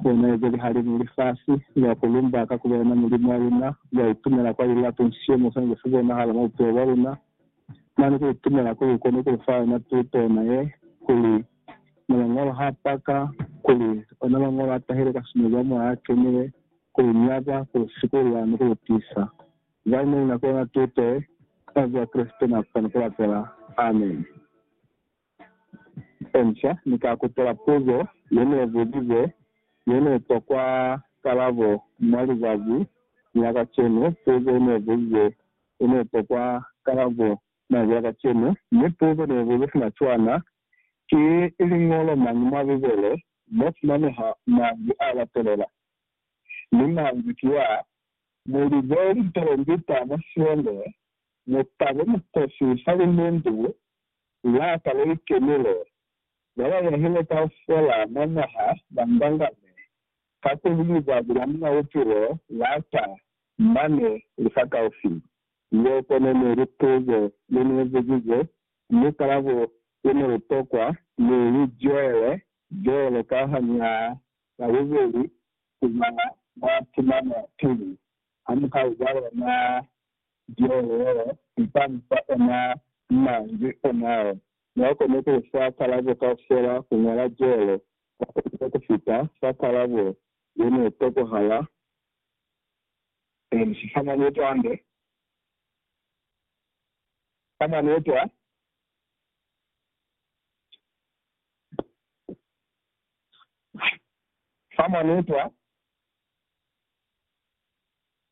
Lena ye peli halimu lifasi, ya ku lumba ka ku ba yona Mulimu wa luna, ya itumela kwa lilato nsiyo mo swanezi ku bonahala mwa bupilo bwa luna. Mane ku itumela kuli kukoni ku lu fa yona tuto yona ye, kuli, Na Mañolo ha paka, kuli, Ona Mañolo a tahile ka sumuli ya Moya a Kenile, ku lu nyaka, ku lu sikulula, ni ku lu tisa. Zani ne ni na ku yona tuto ye, ka Mazazi a Kreste na ku kona ku lapela. Ameni. Inca, Ni ka kutela puzo ye ne buzize ye ne tokwa kalabo mwa lizazi la kacenu, puzo ye ne buzize ye ne tokwa kalabo mañi a kacenu, mi puzo ne buze sina cwana, Ki liñolo mañi mwa Bibele mo fumaneha manzwi a latelela? Mi manzwi ki ya, Mu lize lipelendita mwa siende, mu tabe mukosi fa limundu la ka le li kenile, ba ba yahile kaufela mwa mwaha ba mbangame ka ku li lizwazi la Muñ'a Bupilo la ta mane lifakaufi. Yeo kono ne li puzo ye ne buzize mukalabo o ne u tokwa ni li zwele pele ka hañaa la bubeli ku ba mwa tumano pili ha muhau wa lona Jehova u ka mu fa ona manzwi onao. Mwa kona ku fa kalabo kaufela ku ñola jelo ka pepelo ku fita fa kalabo ye ne tokohala ku fa mwa mutande. Ka maneta,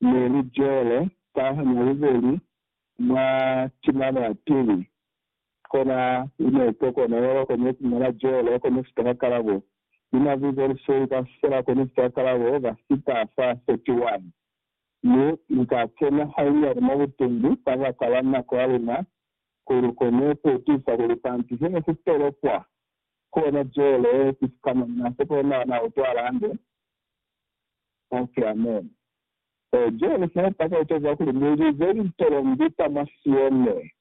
ne li jele ka nyalubeli mwa tilaba teli, kona li ne to kona yaba kone ku ngala jele kone sita ka kalabo. Lina vu Borisoi ka fela kone sita ka kalabo ka sita sa 31, mi Li ka kena hainyali mwa butumbu kabaka la nako ya luna, ku Lu kone ku tisa kuli kanti he ne ku tolokwa kona jele ki sikama, mina se kona na utwala hande. Ba si amene. Ee, Johane sa epa ka etaza kuli, Mu lize lintolongi kwa mwa Sione,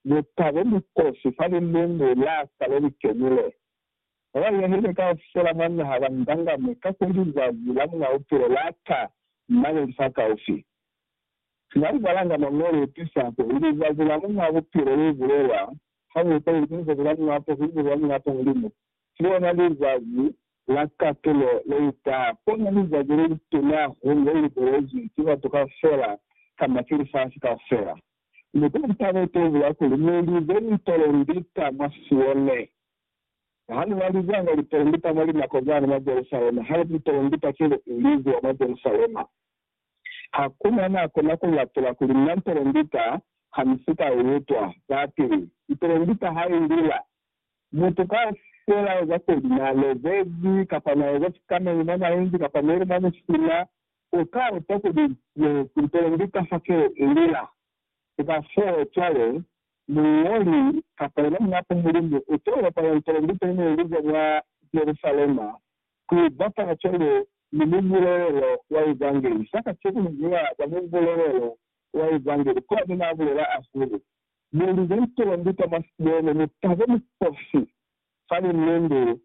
mu tabe mikosi fa lilumu la ka le li kenile. Ba ba yahile kaufela mwa naha ba ngangamwe, kakuli lizazi la Muñ'a Bupilo la ta mane li li fakaufi. Sina ku balanga Mañolo u tiisa kuli lizazi la Muñ'a Bupilo le bulelwa hañata luli ku Lizazi la Muñ'a Poso, Lizazi la Muñ'a Poso li mu fi lona lizazi la katulo leuta pona lizazi lelituna hahulu lelibelezwi ki batu kaufela kamba ki lifasi kaufela. Mi kuli ntabo itobula kuli, Muli be ni polendita mwa Sione. Ha lu na lizanga lipolendita mwa linako zani mwa Jerusalema, haiba lipolendita ki lu ilizwa mwa Jerusalema, hakuna na kona ku lapula kuli, Na mpolendita, ha ni si ka lu utwa. Za pili, mpolendita ha ilila, Mutu kaufela ya za kuli na lobezi kapa na eza sikamenge mwa maenzi kapa meli mwa musina, u ka utwa kuli ne ku ntele ndu ka fa keo i lila. Ku ka foo cwale, muñoli kapa yena Munapo Mulimu u to bapala ntele ndu peli ne i lizwa mwa Jerusalema ku bapala cwalo ni mubulelelo wa Evangeli. Sa kacenu, ni ziba za mubulelelo wa Evangeli, kona ne na bulela hahulu. Mi lu lutela nduta mwa sibele, mi tabe mi fosi fani nundu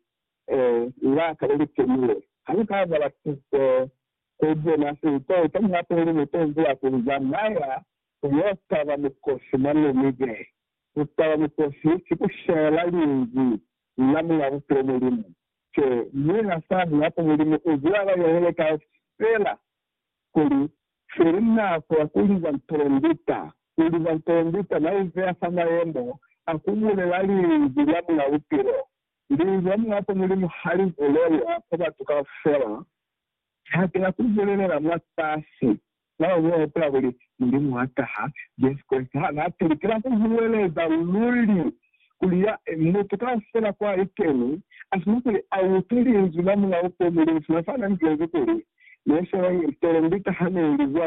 la ka leli kenile. Ha lu ka bala tuto ku bona se lu to eta, nihape luli lu to zula ku lu zamaya ku yo taba mukosi mwa Namibe. Ku taba mukosi ki ku shela Linzwi la Mul'a Bupilo Mulimu. Ki Muñ'a Sahu, nihape Mulimu u zula a ba yelele kaufela. kuli, Feli naa ku ya ku liza mpolondita, u liza mpolondita, na izeya fa mayemo a ku bulela Linzwi lya Muñ'a Bupilo. Linzwi la Muñ'a kwa Mulimu ha li bulelwa kwa batu kaufela. Ha ki na ku bulelela mwa kasi, na lwa mwa hupula kuli, Mulimu wa taha, Jesu Kreste ha na pili. Ki na ku huweleza luli kuli ya mutu kaufela kwa i keni asina kuli a utwi linzwi la mulao ko Mulimu, sina fa na nzezi kuli ne se wa ipele, ndi taha ne ili zwa